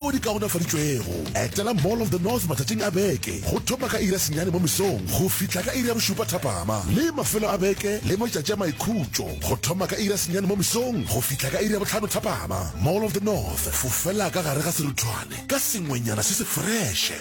Tšeo di kaonafaditšwego, etela Mall of the North matšatšing a beke go thoma ka iri ya senyane mo mesong go fihla ka iri ya bošupa thapama le mafelo a beke le matšatši a maikhutšo go thoma ka iri ya senyane mo mesong go fihla ka iri ya bohlano thapama. Mall of the North, fofela ka gare ga seruthwane ka sengwenyana se se freše.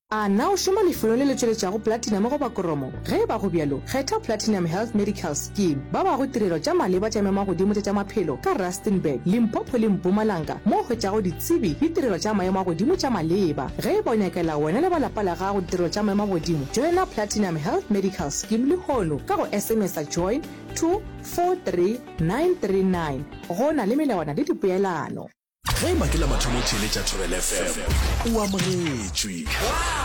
A na o šoma lefelong le le tšweletšago platinum goba koromo? Ge e ba go bjalo, kgetha Platinum Health Medical Scheme. Ba bago tirelo tša maleba tša memagodimo tša tša maphelo ka Rustenburg, Limpopo le Mpumalanga mo o hwetšago ditsebi le tirelo tša maemo a godimo tša maleba. Ge e ba o nyakela wena le ba lapa la gago ditirelo tša maemo a godimo, joina Platinum Health Medical Scheme lehono ka go SMS-a join to 43939. Go na le melawana le dipeelano. ge eba ke la mathomo theeletša thobel fm o amogetšwe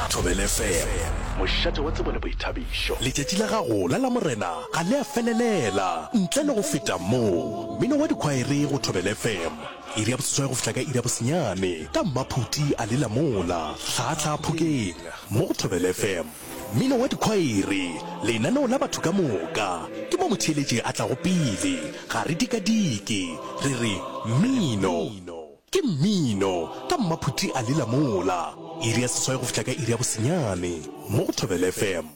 thobel fm mošate wa tsebo le boithabišo letšatši la gago la lamorena ga le a felelela ntle le go feta moo mmino wa dikhwaere go thobel fm iri ya boseswai go fihla ka iri ya bosenyane ka mmaphuti a le lamola tlhaatlhaa phokeng mo go thobel fm Mmino wa dikhwaere, lenaneo la batho ka moka, ke mo motheeletši a tlago pele. Ga re dikadike, re re, Mmino! Ke mmino! Ka mmaphuti a lela mola, iri ya seswai go fihla ka iri ya bosenyane, mo go Thobela FM.